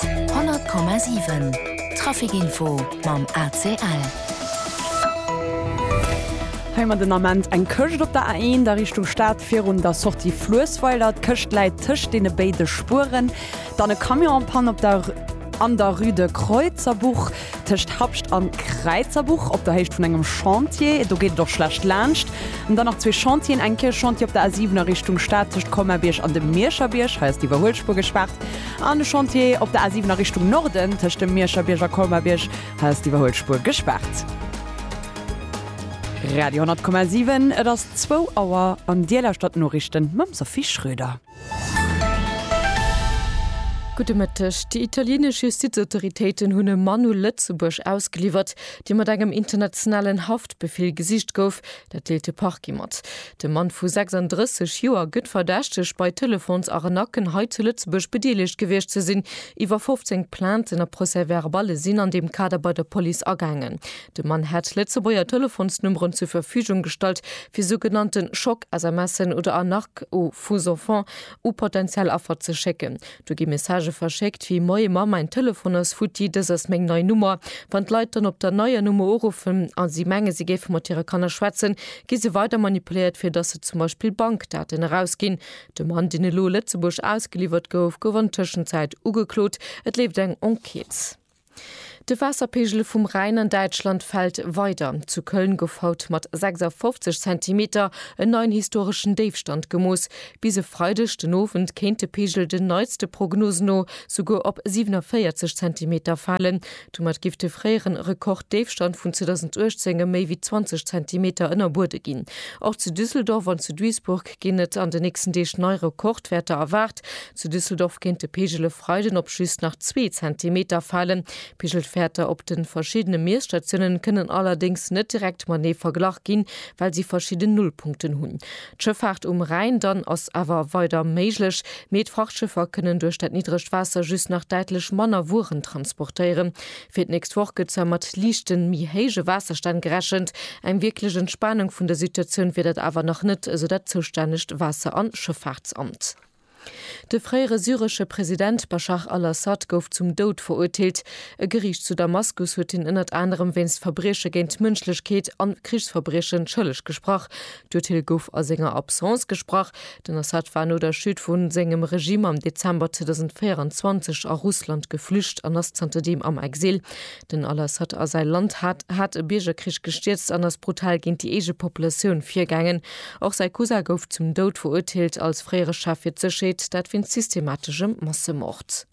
100,7 Trafic Info mam ACL. Hei man den Ament eng Këscht op der A1 a Richtung Stad virun der Sortie Fluessweiler. D'Këscht läit tëscht deene béide Spueren. Dann e Camion en panne op der, an der Rue de Creutzerbuch. Tëscht Habscht an Kräizerbuch op der Héicht vun engem Chantier, do geet et och schlecht laanscht. An dann nach zwee Chantieren, eng Kierch Chantier op der A7 a Richtung Stad tëscht Colmar-Bierg an dem Mierscher Bierg, hei ass d'Iwwerhuelspuer gespaart, an e Chantier op der A7 a Richtung Norden tëscht dem Mierscher Bierg a Colmar-Bierg, hei ass d'Iwwerhuelspuer gespaart. Radio 100,7, et ass zwou Auer an Dir lauschtert d'Noriichten mam Sophie Schröder. Gudde Mëtteg. Déi italienesch Justizautoritéiten hunn e Mann u Lëtzebuerg ausgeliwwert, dee mat engem internationalen Haftbefeel gesicht gouf. Dat deelt de Parquet mat. De Mann vu 36 Joer gëtt verdächtegt, bei Telefons-Arnacken hei zu Lëtzebuerg bedeelegt gewiescht ze sinn. Iwwer 15 Plainten a Procès-verballe sinn an deem Kader bei der Police agaangen. De Mann hätt Lëtzebuerger Telefonsnummeren zur Verfügung gestallt, fir sou genannte Schock-SMSen oder Arnaques aux faux enfants u potentiell Affer ze schécken. Do gi Messagë verschéckt wéi, Moie Mamm, mäin Telefon ass futti, dës ass meng nei Nummer. Wann d'Leit dann op der neier Nummer uruffen a si menge si géife mat hire Kanner schwätzen, gi se weider manipuléiert, fir datt se zum Beispill Bankdaten erausginn. De Mann, deen elo Lëtzebuerg ausgeliwwert gouf, gouf an Tëschenzäit ugeklot. Et leeft eng Enquête. De Waasserpeegel vum Rhäin an Däitschland fält weider. Zu Köln gouf haut mat 56 Zentimeter en neien historeschen Déifstand gemooss. Bis e Freideg den Owend kéint de Peegel den neitste Prognosen no souguer op 47 Zentimeter falen. Domat giff de fréieren Rekorddéifstand vun 2018 ëm méi wéi 20 Zentimeter ënnerbuede ginn. Och zu Düsseldorf an zu Duisburg ginn et an de nächsten Deeg nei Rekordwäerter erwaart. Zu Düsseldorf kéint de Peegel e Freiden op just nach zwee Zentimeter falen. D'Peegelwäerter op de verschiddene Miesstatiounen kënnen allerdéngs net direkt matenee verglach ginn, well si verschidden Nullpunkten hunn. D'Schëffaart um Rhäin dann ass awer weider méiglech, mee d'Frachtschëffer kënnen duerch dat niddregt Waasser just nach däitlech manner Wueren transportéieren. Fir d'nächst Woch gëtt zwar mat liichten, méi héije Waasserstänn gerechent, eng wierklech Entspanung vun der Situatioun wier dat awer nach net, esou dat zoustännegt Waasser an Schëffaartsamt. De fréiere syresche President Baschar al-Assad gouf zum Doud verurteelt. E Geriicht zu Damaskus huet hien ënnert anerem wéinst Verbrieche géint d'Mënschlechkeet an Krichsverbriechen schëlleg gesprach. D'Urteel gouf a senger Absence gesprach. Den Assad war no der Chute vu sengem Regime am Dezember 2024 a Russland geflücht an ass zanter deem am Exil. Den al-Assad a säi Land hat hat e Biergerkrich gestierzt an ass brutal géint déi eege Populatioun virgaangen. Och säi Cousin gouf zum Doud verurteelt als fréiere Chef fir d'Sécherheet, dat wéinst systemateschem Massemord.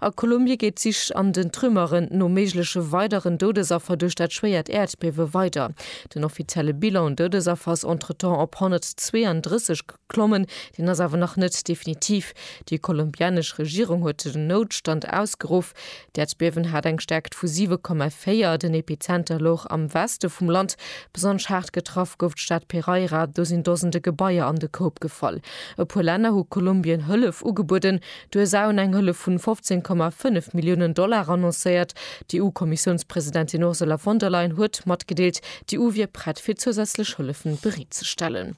A Kolumbie geet d'Sich an den Trümmeren no méigleche weideren Doudesaffer duerch dat schwéiert Äerdbiewe weider. Den offizielle Bilan un Doudesaffer ass entretemps op 132 geklommen. Deen ass awer nach net definitiv. Déi kolumbianesch Regierung huet den Noutstand ausgeruff. D'Äerdbiewen hat eng Stäerkt vu 7,4. Den Epizenter louch am Weste vum Land. Besonnesch haart getraff gouf d'Stad Pereira. Do sinn Dosende Gebaier an de Koup gefall. E puer Länner hu Kolumbien Hëllef ugebueden. D'USA hunn eng Hëllef vun 15,5 Milliounen Dollar annoncéiert. D'EU-Kommissiounspresidentin Ursula von der Leyen huet matgedeelt, d'EU wier prett fir zousätzlech Hëllefen bereet ze stellen.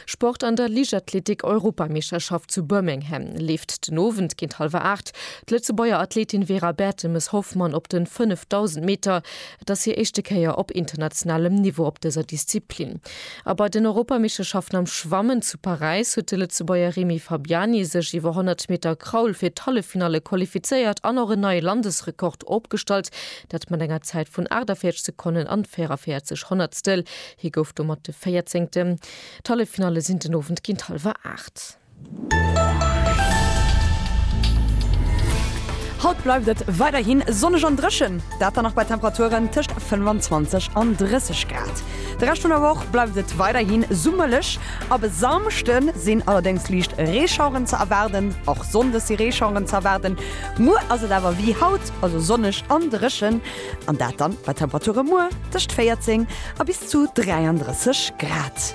Sport An der Liichtathletik-Europameeschterschaft zu Birmingham leeft den Owend géint hallwer 8 d'Lëtzebuerger Athletin Vera Bertemes-Hoffmann op den 5000 Meter. Et ass hir éischte Kéier op internationalem Niveau op dëser Disziplin. A bei den Europameeschterschaften am Schwammen zu Paräis huet de Lëtzebuerger Remy Fabiani sech iwwer 100 Meter Kraul fir d'Halleffinalle qualifizéiert an och en neie Landesrekord opgestallt, dat mat enger Zäit vun 48 Sekonnen an 44 Honnertstel. Hie gouf domat de Véierzéngten. D'Halleffinalle sinn den Owend géint hallwer aacht. Haut bleift et weiderhi sonneg an dréchen, dat dann och bei Temperaturen tëscht 25 an 30 Grad. De Rescht vun der Woch bleift et weiderhi summerlech, ab e Samschde sinn allerdéngs liicht Reeschaueren ze erwaarden. Och sonndes si Reeschaueren ze erwaarden. Muer ass et awer wéi haut, also sonneg an dréchen, an dat dann bei Temperature muer tëscht 14 a bis zu 33 Grad.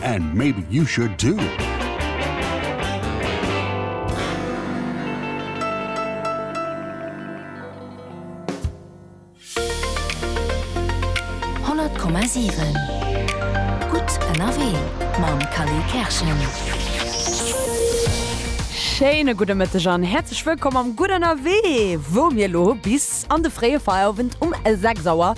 And maybe you should too! Schéine gudde Mëtteg an häerzlech wëllkomm am Gutt Ënnerwee, wou mir elo bis an de fréie Feierowend um 6 Auer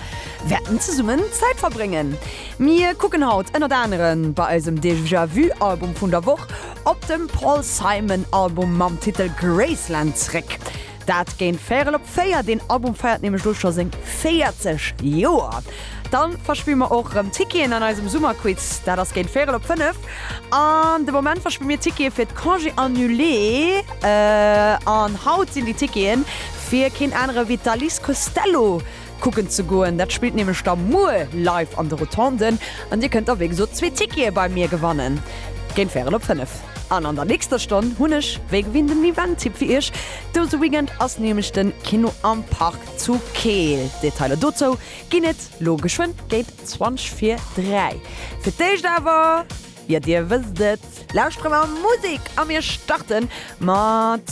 wäerten zesummen Zäit verbréngen. Mir kucken haut ënnert aneren bei eisem Déjà Vu Album vun der Woch op dem Paul Simon Album mam Titel Graceland zréck. Dat géint véirel op véier, deen Album feiert nämlech lo scho seng 40 Joer. Dann verspille mer och rëm Ticketen an eisem Summerquiz, dat ass géint véirel op fënnef. An de Moment verspille mir Tickete fir d'Congé Annulé an haut sinn déi Tickete fir keen anere wéi d'Alice Costello kucken ze goen. Dat spillt nämlech da muer live an de Rotonden an dir kënnt da wéi gesot zwee Tickete bei mir gewannen géint Fären op 5. An an der nächster Stonn hunn ech wéi gewinnt den Event-Tipp fir iech. Dëse Weekend ass nämlech den Kino am Park zu Keel. Detailer dozou ginn et lo geschwënn géint 20 vir 3. Fir d'éischt awer, jo dir wësst et, lauschteren mer Musek a mir starten mat.